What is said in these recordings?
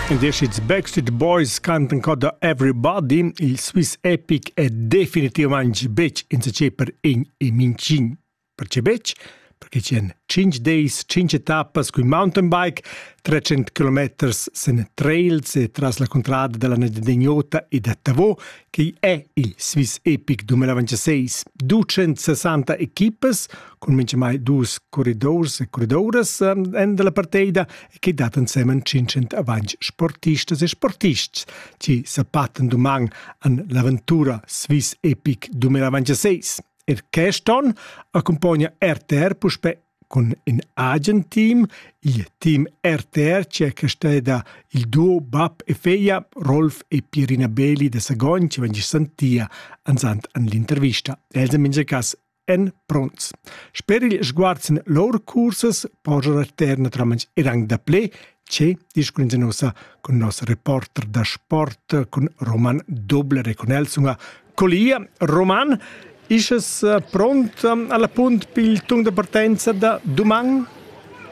In deschits Backstreet Boys cantan cota Everybody, il Swiss Epic è definitivamente betg insacé per in e mincin. Perché betg? Perché c'èn 5 days, 5 etappas cun mountain bike, 300 km sen trails e tras la contrada della Nedeniota e da Tavò, che è il Swiss Epic 2026. 260 equipas, cun mintgamai dus corridors e corridoras en della partida e che dat ensemen 500 avanti sportistas e sportists che sapaten doman an l'avventura Swiss Epic 2026. Er quest'on accompagna RTR puspe con in agen team, il team RTR cerca steda il duo bab e feia Rolf e Pierina Beli de Sagon che vegni santia ansant an l'intervista. Els en minge cas en pronts. Sper il sguard sin lor cursas poja terna tramans erang da ple che discurin nossa con nos reporter da sport con Roman Doble reconelsunga colia Roman Isches eh, pront eh, alla punt pil tung de partenza da doman?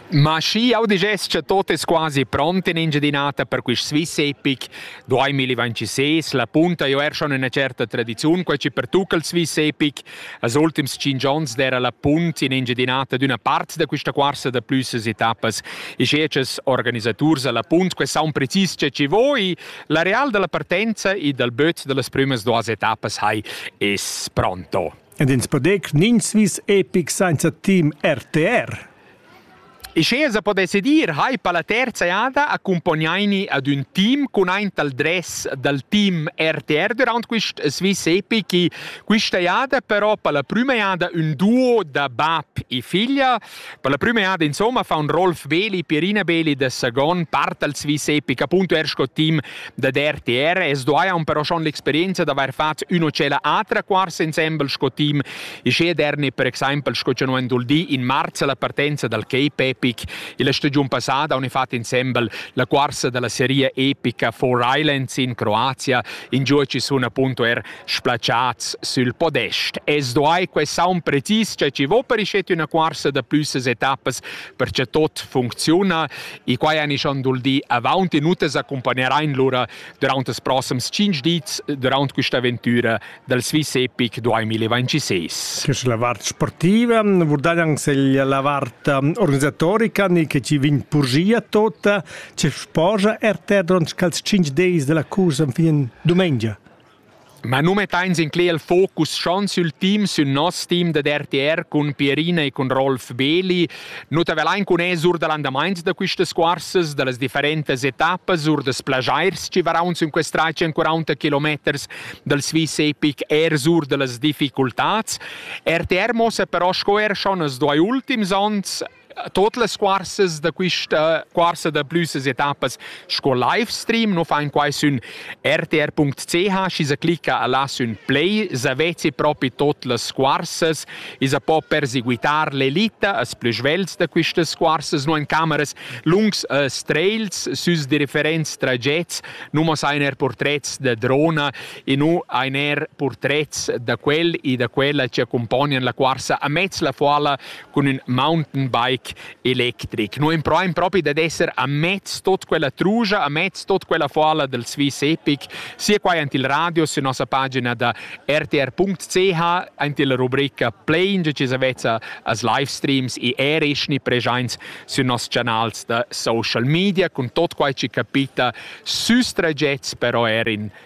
Ma schi jau dess cha tot es quasi pront in Engiadin'Ota per quist Swiss epic 2026. La punta jo er schon üna certa tradiziun, quai chi pertucca il Swiss epic. Als ultims tschinch ons d'era la punt in Engiadin'Ota d'üna part da quista cuorsa da plüssas etappas e sche chas organisaturs a la punt que saun precis cha chi vo e l'areal da la partenza e dal böt da las prümas duas etappas hai es pronto. ed ins podec nin svis epic sainza team RTR. E sche sa podesse dir, hai pa la terza eada accompagnaini ad un team con aint al dress dal team RTR durant quist Swiss Epic, quista eada però pa la prima eada un duo da bab e figlia, Per la prüma eada insomma fa un Rolf Beli, Pierina Beli da Sagon, part als Swiss Epic, appunto er sco team da RTR. Es doaja un però schon l'experienza d'avair fat üno cella atra quars ensemble sco team e sche derni per exaimpel sco cha no endul di in marzo la partenza dal Cape Epic e la stagiun passada on fat ensemble la quarsa della serie epica Four Islands in Croazia. In gioci sun appunto er splaciats sül podest e sduai que saun precis cha chi vo per ischet üna cuorsa da plüssas etappas per cha tuot funcziuna e quai han isch dul di avaunt minutas accompagnerein lura durant els prossems 5 dits durant quista avventura dal Swiss Epic 2026. Che la vart sportiva, vurdai anche se la vart organisatorica ni che ci vin purgia tota, ce sposa er te durant scals 5 days della cursa fin domenica. Ma nu mettains incler il focus schon sül team, sün nos team dad RTR cun Pierina e cun Rolf Beli. Nu t'avelain cun es our da l'andamaints da quistas cuorsas, da las differentas etappas, our das plagiers chi varaunz in quest trai 140 kilometers dal Swiss Epic eir sur da las difficultats. RTR mossa però sco er schon als duai ultims ons Tot las cuorsas da quista cuorsa da plüssas etappas sco livestream nu fain quai sün rtr.ch, schi sa clicca a là sün play, s'avezi propi tot las cuorsas, i sa po perseguitar l'elita as plü svelts da quistas cuorsas, no in cameras lungs e streils süs differents tragets, nu mo sain eir purtrets da drona, e nu hain eir purtrets da quel e da quella chi accumpognan la cuorsa amez la foala cun ün mountainbike electric. No improvain propi dad esser a mezz tot quella trugia, a mezz tot quella folla del Swiss Epic, sia quai ant il radio sur nossa pagina da rtr.ch, ant illa rubrica Plain, che ci savezza as livestreams e erischni preschaints sü nos canals da social media, cun tot quai ci capita süs tragets, però er in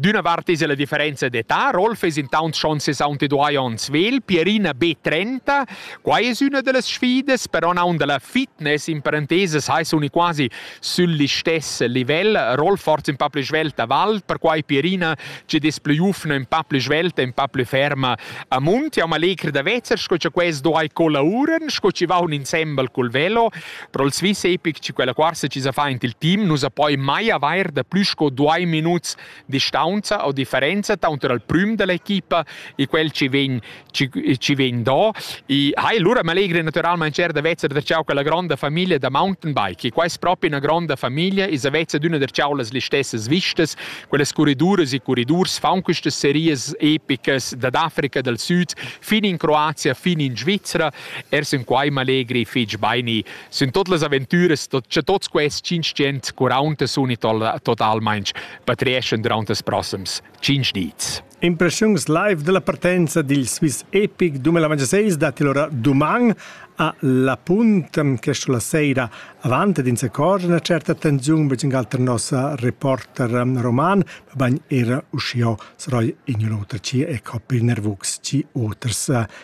D'üna vart es la differenza d'età, Rolf es intaunt schon 62 ons vegl, Pierina be 30. Qua es üna da las sfidas, però naun da la fitness in parentesas hai suni quasi sül listess livel. Rolf forza ün pa plü svelta val, perquai Pierina chi'd es plü giufna, ün pa plü svelta, ün pa plü ferma a munt. Jau m'allegr da vezzer sco cha quels do ai colauran, sco chi vaun insembel cul velo. Però il Swiss Epic, quella quarta ci sa fa in il team, nu sa poi mai avair da plü sco due minuts distanza o differenza tanter il prüm dell'equipa e quel ci vegn ci, ci vegn do. E hai lura m'allegri naturalmente cer da vezza der ciao quella grande famiglia da mountain bike. E qua è proprio una grande famiglia e sa vezza d'una der ciao las stesse vistas, quelle corriduras e corridurs fan queste series epicas dall'Africa del Sud fin in Croazia, fin in Svizzera Er sün quai m'allegri fich baini, sün tot las aventüras cha tots quests tschintschient quaraunta suni totalmaing patreeschan durant els prossems tschinch dis. Impressiuns live della partenza dil Swiss Epic 2026 datti allora doman a La Punt che sulla sera avanti din accorge una certa attenzione per un altro nostra reporter roman bain era uscio saroi in un'otra ci e coppi nervux ci oters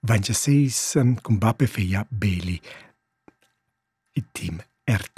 vain già seis cun bap e figlia Beli. Il team RT